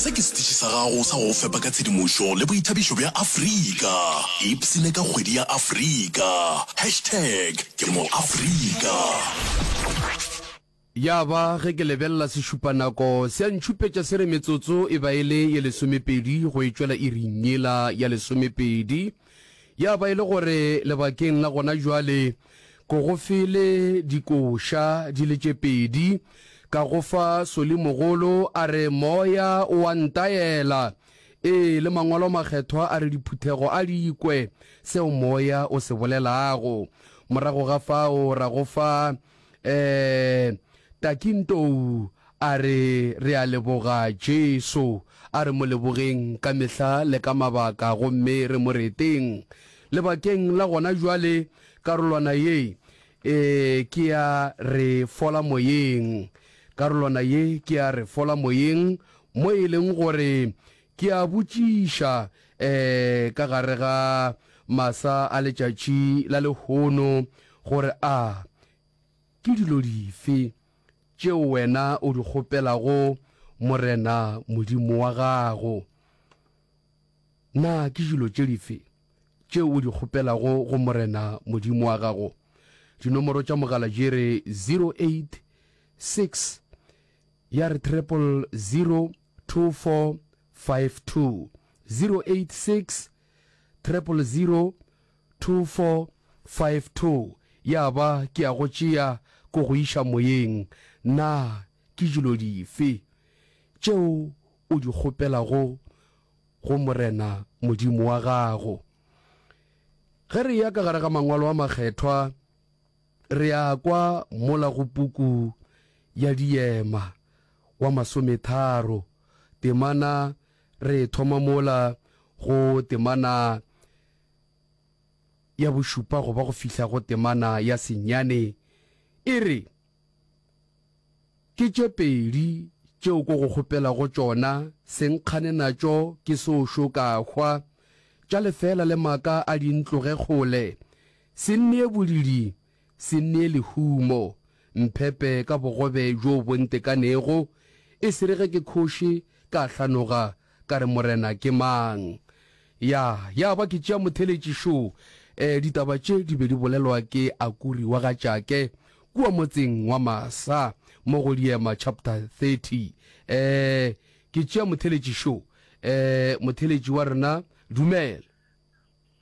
Se ke setiši sa gago sa go go fepa ka tshedimošo le boithabišo bja Afrika. Ipsine ka kgwedi ya Afrika. Hashtag ke moAfrika. Ya ba ge ke lebelela sešupanako se a ntšhupetša se re metsotso e ba e le ye lesomepedi go e tšwela iring yela ya lesomepedi. Ya ba e le gore lebakeng la gona jwale ko go fele dikoša di le tše pedi, ka go fa Solimogolo a re, Moya o a ntaela, ee, le Mangwalo a Makgethwa a re diphuthego a di kwe seo Moya o se bolelago. Morago ga fao ra go fa Eh, Takintou a re re a leboga Jesu, a re mo lebogeng ka mehla le ka mabaka gomme re mo reteng. Lebakeng la gona jwale karolwana ye e ke ya re fola moyeng. Karolwana ye ke ya re fola moyeng mo e leng gore Ke a botšiša, ee, ka gare ga masa a letšatši la lehono, gore a ke dilo dife tšeo wena o di kgopelago Morena Modimo wa gago? Na ke dilo tše dife tšeo o di kgopelago go Morena Modimo wa gago? Dinomoro tša mogala di re 086 ya re triple zero 2452 086 300 2452 Ya ba ke a go tšea ko go iša moyeng, na ke dilo dife tšeo o di kgopelago go Morena Modimo wa gago? Ge re eya ka gare ga Mangwalo a Makgethwa, Re a kwa mola go puku ya Diema wa masometharo temana re thoma mola go temana ya bošupa go ba go fihla go temana ya senyane e re, Ke tše pedi tšeo ko go kgopelago tšona, se nkgane natšo ke se o šo ka hwa, tša lefeela le maka a di ntloge kgole, se nnee bolidi, se nnee lehumo, mphepe ka bogobe bjo bo ntekanego, e se re ge ke kgoši ka hlanoga Ka re, Morena, ke mang? Ya, ya ba ke tšea motheletši šo. E, ditaba tše di be di bolelwa ke Akuri wa ga Jake, kua motseng wa Masa, mo go Diema chapter 30. E, ke tšea motheletši šo. E, motheletši wa rena, dumela.